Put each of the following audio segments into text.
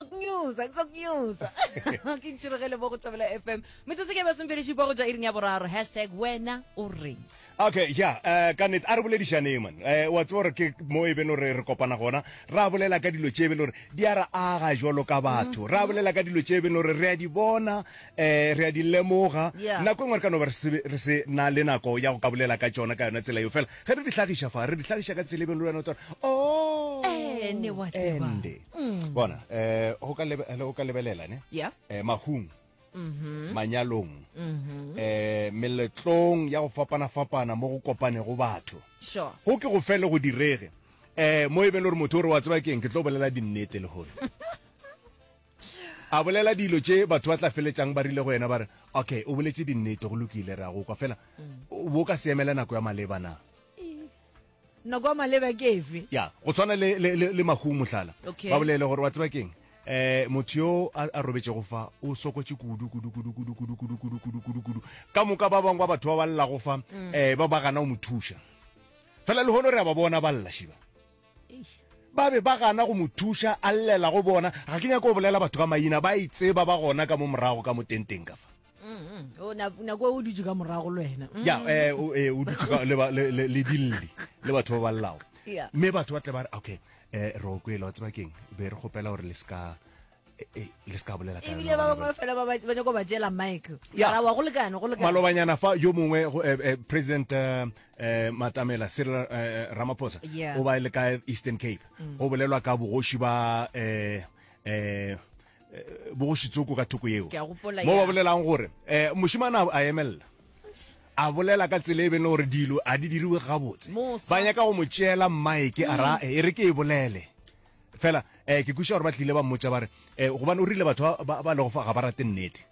kunyuza ke sa kunyuza ke ntšhiregele mo go thabela fm metsotso ke basomperešipa go ja iring ya boraro hashtag wena o reng okay ya eh, ka nete a re boledišaneng man Eh, wa tseba gore ke mo e beno re re kopana gona ra bolela ka dilo tše e beno gore di a re aga jalo ka batho ra bolela ka dilo tše e beno gore re a di bona um re a di lemoga Yeah. nako e nngwe re ka no ba re se- re se na le nako ya go ka bolela ka tsona ka yona tsela eo fela ge re di hlagiša fa re di hlagiša ka tsela e beno le wena o tore o Eh, ne wa tseba. ende mm. bona um go ka lebelela ne yeah. um mahung mm-hmm. manyalong mm-hmm. eh meletlong ya go fapana fapana mo go kopane go batho sure go ke go fele go direge eh mo e be le gore motho o re wa tseba keng ke tlo bolela dinnete le gore a bolela dilo tše batho ba tla feletsang ba rile go yena ba re okay o boletse dinnete go lokile re a go kwa fela mm. bo ka seemela nako ya maleba na Nako ya maleba ke efe? ya go tshwana le, le, le, le mahung mohlala Okay. ba bolele gore wa tseba keng um motho yo a, a robetšego fa o sokotše kudu kudu kudu kudu kudu kudu kudu kudu kudu kudu ka moka ba bangwe ba batho ba ba llago fa um ba ba gana go mo thuša fela le gone re a ba bona ba lla šiba ba be ba gana go mo thuša a llela go bona ga ke nyako go bolela batho ka maina ba e tseba ba gona ka mo morago ka mo tenteng ka fa mm-hmm. nako o dutse ka morago le wena mm. ya eh, eh, o dutse le dilli le batho ba ba llago mme batho ba tle ba re okay um roko e lawa tsebakeng be re kgopela gore le seka Eh, eh, le se ka bolela ebile ba bangwe fela ba nyako ba jela mike arawa go lekane go lekane malobanyana fa yo mongwe eh, president matamela cyril ramaphosa o ba e le ka eastern cape mm. go bolelwa ka bogoši ba um bogošitsoko ka thoko yeo mo ba bolelang gore um mošimana a emelela a bolela ka tsela e bene gore dilo a di diriwe gabotse ba nyaka go mo tšeela mmaeke a ra e re ke e bolele fela um ke kuša gore ba tlile ba mmotsa ba re um gobane o rile batho ba lego fa ga ba rate nnete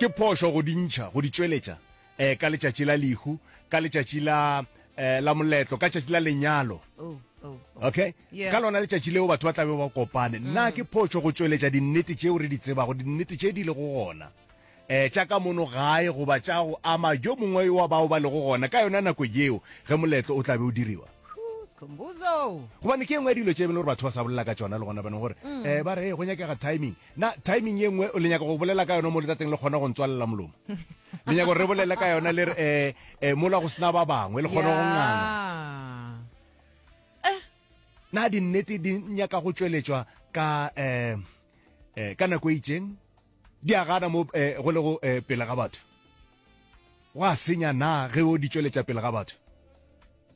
ke phošo go di ntšha go di tšweletša um ka letšatši la lehu ka letšatši la um la moletlo ka tšatši la lenyalo oh, oh, oh. okay ka lona letšatši leo batho ba tlabe ba kopane mm. nna ke phošo go tšweletša dinnete tšeo re di tsebago dinnete tše di le go gona um tša ka mono gae goba tša go ama jo mongwe wa bao ba lego gona ka yona nako yeo ge moletlo o tlabe o diriwa gobane ke engwe ya dilo tse e bele gore batho ba sa bolela ka tsona le gona bane gore um ba re go nyakega timing na timing ye nngwe le nyaka go bolela ka yona mo letateng le kgona go ntswalela molomo le nyaka gore re bolele ka yona le re um um mola go sena ba bangwe le kgona go nganga eh. na dinnete di nyaka go tšweletšwa ka um ka nako e itseng di a gana mo um go le go um pele ga batho wa senya na ge o di tšweletša pele ga batho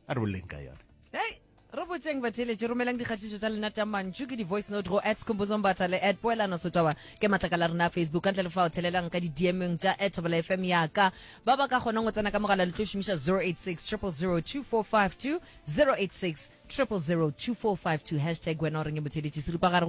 a re boleleng ka yone hey re botseng batheeletše romelang dikgatišo tša lena tša mantšu ke di-voice note go at scombozombatha le at poelano sotaba ke matlaka la rena facebook ka ntle le fa o thelelang ka di-dmeng tša at thobela fm yaka ba ba ka kgonang go tsena ka mogala le tlo šomiša 086 002452 086 002452 hashtag wena o reng e motheeletše seripagare go